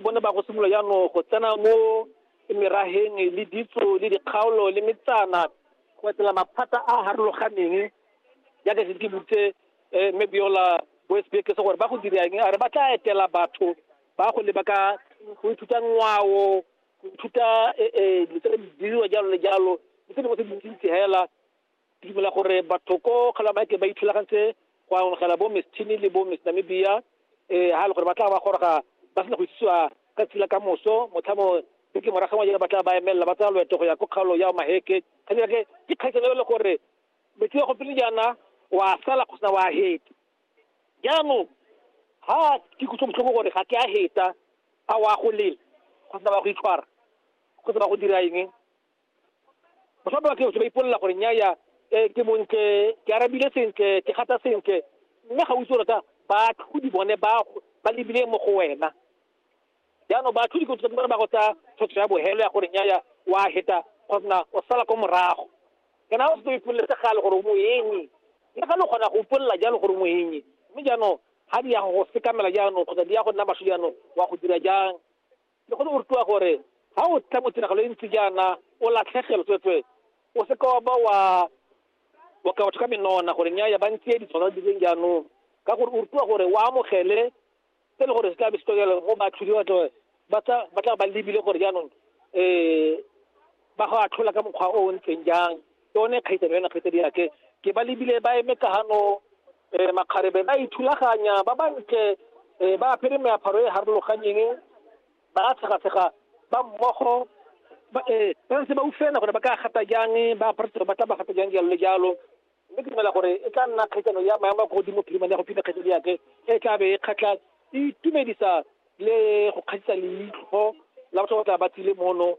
bone ba go simolola jaanong go tsena mo merageng le ditso le dikgaolo le metsana go etela maphata a a harologaneng jaaka se ke butse um mme beola boesbeke se gore ba go dirang a re ba tla etela batho ba go leba ka go ithuta ngwao go ithuta um dilo tse di diriwa jalo le jalo le tse dingwe tse dintsi-ntsi fela Ke dumela gore batho ko Kgalamake ba ithulagantse go amogela bo Miss Chini le bo Miss Namibia eh, ha e le gore ba tla ba goroga ba sena go itsisiwa ka tsela ka moso motlhamo beke morago wa jone ba tla ba emelela ba tsaya loeto go ya ko kgaolo ya Omaheke kgaitsane ke ke kgaitsane e le gore metsi ya gopele jaana wa sala go sena wa heta jaanong ha ke kutlo botlhoko gore ga ke a heta a wa go lela go sena ba go itshwara go sena go dira eng baswa ba batho ba ipolelela gore nyaya um ke montle ke arabile sentle ke gata sentle mme ga o itse rata baatlhodi bone ba ba lebile mo go wena jaanong baatlhodi kotsa ba ba go tsaya tshotso ya bohelo ya gore nyaya wa heta kgotsa o sala ko morago kana o se ipolele se gale gore o moenyi le ga le kgona go ipolelela jalo gore o moenyi mme jaanong ga di ya go sekamela jaanong kgotsa di ya go nna masho jaanong wa go dira jang Le go ne go rutiwa gore ga o tla mo tiragalo e ntsi jaana o latlhegelo tsweetswee, o seka wa ba wa wa ka batho ka menona gore nnyaya ba ntse di tshwana di leng jaanong, ka gore o rutiwa gore o amogele se le gore se tla be se tokelo go baatlhodi ba tla ba tla ba tla ba lebile gore jaanong um ba go atlhola ka mokgwa o o ntseng jang. yone kgaitsano yone kgaitsadi yake ke ba lebile ba eme ka gano um makgarebe ba ithulaganya ba bantle um ba apere meaparo e harologanyeng ba tshegatshega ba mmogo ba eh, ba ntse ba ufena gore ba ka gata jang ba apara tiro ba tla ba gata jang jalo le jalo mme ke dumela gore e tla nna kgaitsano ya maemo a ko godimo phirimane ya go phina kgaitsadi yake e tla be e kgatlha e itumedisa le go kgatlhisa leitlho la batho ba tla ba tsile mono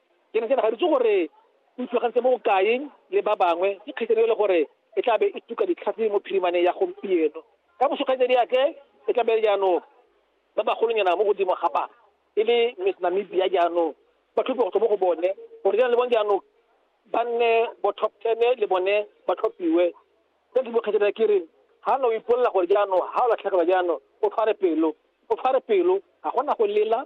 Ke ne ke ne ga ritse gore o itlhogantse mo bokae le ba bangwe ke kgaitsadi e le gore e tla be e tuka ditlhatse mo phirimaneng ya gompieno. Ka moso kgaitsadi ya tle e tla be jaanong ba bagolonyana mo godimo ga ba e le Miss Namibia jaanong ba tlhophiwa go tswa mo go bone gore jaanong le bone jaanong ba nne bo top ten le bone ba tlhophiwe. Ka ntho mo kgaitsadi ya ke re ga no ipolela gore jaanong ga o latlhegelwa jaanong o tshware pelo o tshware pelo ga gona go lela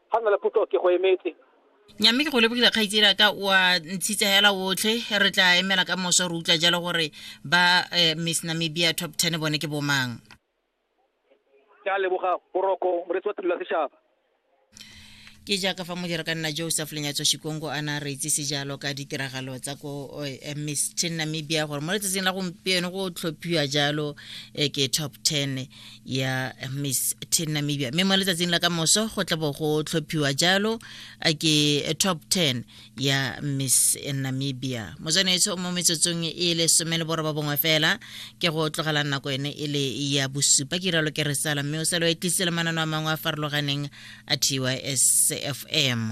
ga nna le potso ke go emetse nyamme ke go lebogile kgaitsela ka wa ntshitsa hela otlhe re tla emela ka moso re utlwa jalo gore ba eh, miss namibia top ten bone ke bomang ke a leboga boroko moretsi wa thulula setšhaba ke jaaka fa modira ka nna joseph lenyatso shikongo a na re itsise jalo ka ditiragalo tsa ko eh, eh, miss ten namibia gore mo letsatsing la gompieno go tlhophiwa jalo eh, ke top ten ya miss ten namibia mme mo letsatsing la ka moso go tla bo go tlhophiwa jalo a ke top 10 ya miss namibia motswanetso mo metsotsong e le some le boroba bongwe fela ke go tlogela nako ene e le ya bosupa ke ralo ke re sala mme o salo e tlisele manano a mangwe a farologaneng a tysfm